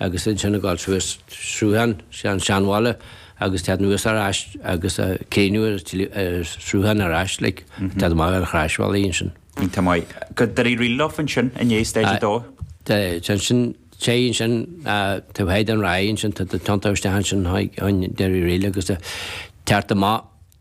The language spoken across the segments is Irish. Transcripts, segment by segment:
agus ansin ag dul suas sruthán, sé an seanbhaile agus teacht anuas ar ais agus críochnú ar sruthán ar ais like, teacht amach ar Chroisbhealaí ansin. Iontach maith. Go Doire Uí Fhríl atá ansin i ndiaidh stage 2? Tá ansin, sé ansin Droichead an Ráith ansin tá tiontú isteach ansin in Doire Uí Fhríl agus teacht amach,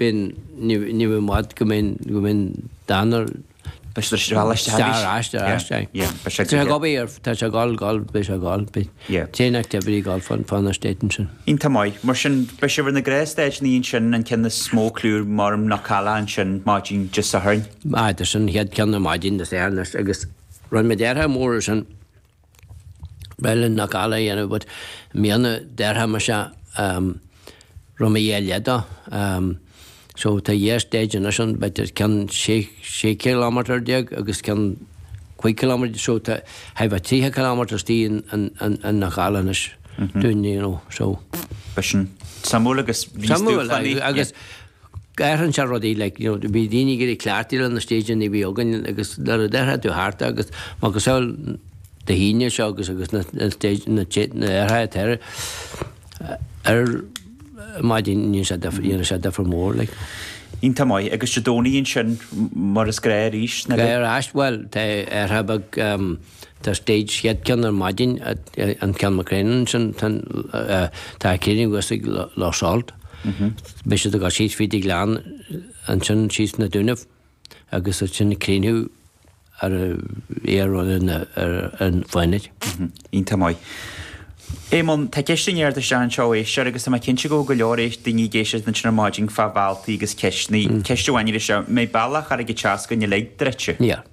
B'in, níl i bhfad go mbeidh Dánal. Beidh sé ar ais do Stair, ais do, ais do. Tá sé ag gabh air, tá sé ag gabh, gabh, beidh sé ag gabh, beidh tréan activity ag gabh fá na stáitsí ansin. Iontach maith. Mar sin, beidh sibh ar na gnáthstáitsí ina dhiaidh sin, an ceann is mó cliú mar atá Knockalla ansin maidin Dé Sathairn. Aye, tá sin an chéad ceann ar maidin Dé Sathairn, agus rinn muid athrú mór ansin, Bheith le na galair a dhéanamh but míonna deartha mar seo roim a dheich lá dó. So tá a dheich stage anois ann b'fhéidir ceann sé sé cileámeatar déag agus ceann cúig cileámeatar déag so tá thithe a trí cileámeatar is tí an na galair anois dúinn you know so. B'shin suimiúil agus bhí stuaifeáin í. Suimiúil agus Athraíonn seo rudaí like you know bhí daoine ag éirí cleachtaithe leis na stage a bhí againn agus nuair a athraíonn tú thart agus macasamhail Dé hAoine seo agus agus na na stage na té na déarfá it ar ar maidin ghní sé duifear ghní sé duifear mór like. Iontach maith agus Dé Domhnaigh ansin mar is gnách arís na. Gnách ar ais bhuel tá athrú beag. Tá stage chéad cheann ar maidin in Kilmacrennan ansin tan tá críochnú thuas ag Loch Salt. Beidh siad ag gabháil síos fríd an Ghleann ansin síos na Dúnaibh agus ansin críochnú ar fhéar ar an ar an Fánaid. Iontach maith. Éamonn, tá ceist i ndiaidh a theacht isteach anseo ó éisteoir agus tá mé cinnte go bhfuil go leor éis daoine ag éisteacht ansin ar maidin fá bhealtaí agus ceisteannaí. Ceist amháin acu is ea, an mbeidh bealach Charraig an tSeascain uilig druidte? Níor.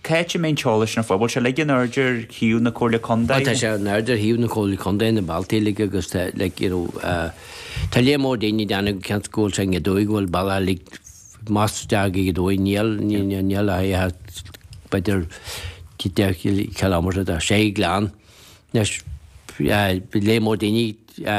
Cá háit a mbeidh an t-eolas don phobal uilig in airde ar shuíomh na Comhairle Contae. Tá sé in airde ar shuíomh na Comhairle Contae na bealtaí uilig agus tá like you know tá lear mór daoine ag déanamh cinnte go bhfuil sé ag dóigh go bhfuil bealach uilig más dearg ag dóigh níl níl níl a haghaidh a b'fhéidir tí de chiliméadar a dá sé gleann leis lear mór daoine a